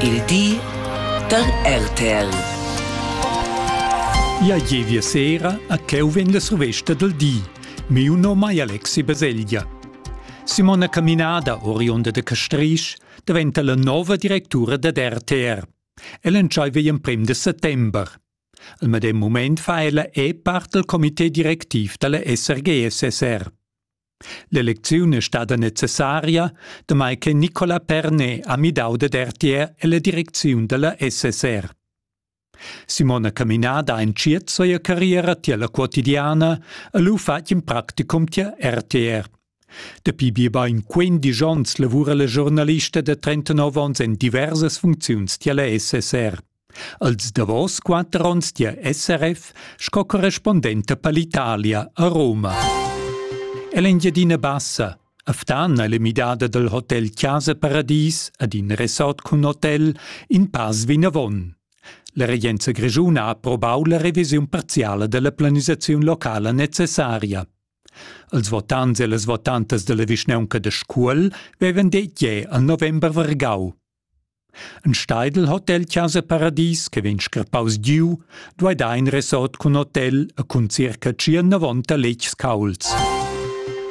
Il di da RTL. Ja jevia sera a cheu vegn la survesta del di. Miu nom ei Alexi Baselgia. Simona Caminada, oriunda de Castrisch, diventa la nova directura dad RTR. Ella entscheiva igl emprem de settember. Al medem moment fa ella è part del comité directiv dalla SRG-SSR. L'elecziun è stada necessaria, damai che Nicolas Pernet ha midau dad RTR ella direcziun dalla SSR. Simona Caminada ha entschiet sia carriera tier la quotidiana e lu fatg in practicum tier RTR. Dapi biebein 15 onns lavura la giornalista da 39 onns en diversas funcziuns tier la SSR. Als davos quatter onns dia SRF sco correspondenta per l'Italia a Roma. È l'Engiadina Bassa, a Ftan è le midada dal hotel Chiasa Paradis ad in resort cun hotel in pass vinavon. La regenza grigiuna ha approbau la revisiun parziala della planisazione locala necessaria. Als votants e las votantas della vischnaunca de Scuol vevan detg al november vargau Ein Steidl Hotelchasa Paradies che vegn scrappaus giu duei dar in resort cun hotel e cun circa tschient-novanta letgs caulds.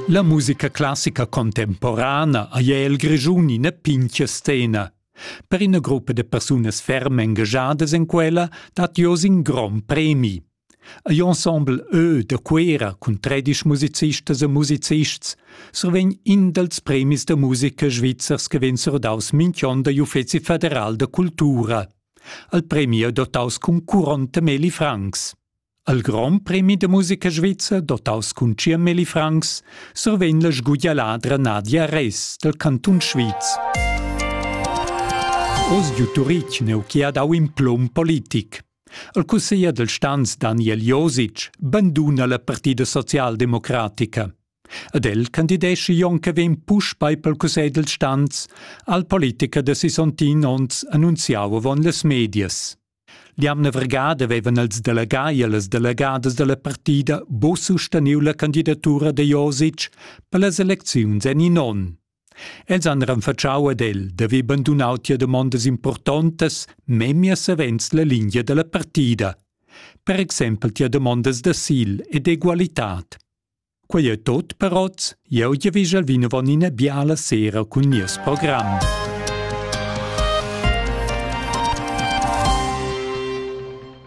La musica classica contemporana ei el Grischun ina pintga scena. Per ina gruppa de persunas ferm engagiadas en quella dat jeu in grond premi. Ei ensemble ö da Cuera cun tredisch musicistas e musicists survegn in dals premis da musica svizzers che vegn surdaus mintg'onn dagl Uffeci federal da cultura. Al premi è dotaus cun curont da Meli Franks. Al Grand Premi da musica svizzer, dotaus cun Cia Meli Franks, survegn la sguglialadra Nadia Res dal Cantun Sviz. Oz giu Turitg neu chi ha dau in plum politic. Il cusseglier dal stans Daniel Josic banduna la partida socialdemocratica. Ed el candideschi jon che vegn puspei pel cussegl dal stans al politicher da sisontin onns annunziau avon las medias. L'jamna vergada vevan els delegai e las delegadas dalla partida bo susteniu la candidatura de Josic per las elecziuns en in onn. Els han renfatschau ad el da haver bandunau tia damondas impurtontas memia savens la lingia dalla partida, per exempel tia damondas d'asil e d'egualitad. Quei ei tot per oz, jeu giavischel vinavon ina biala sera cun nies program.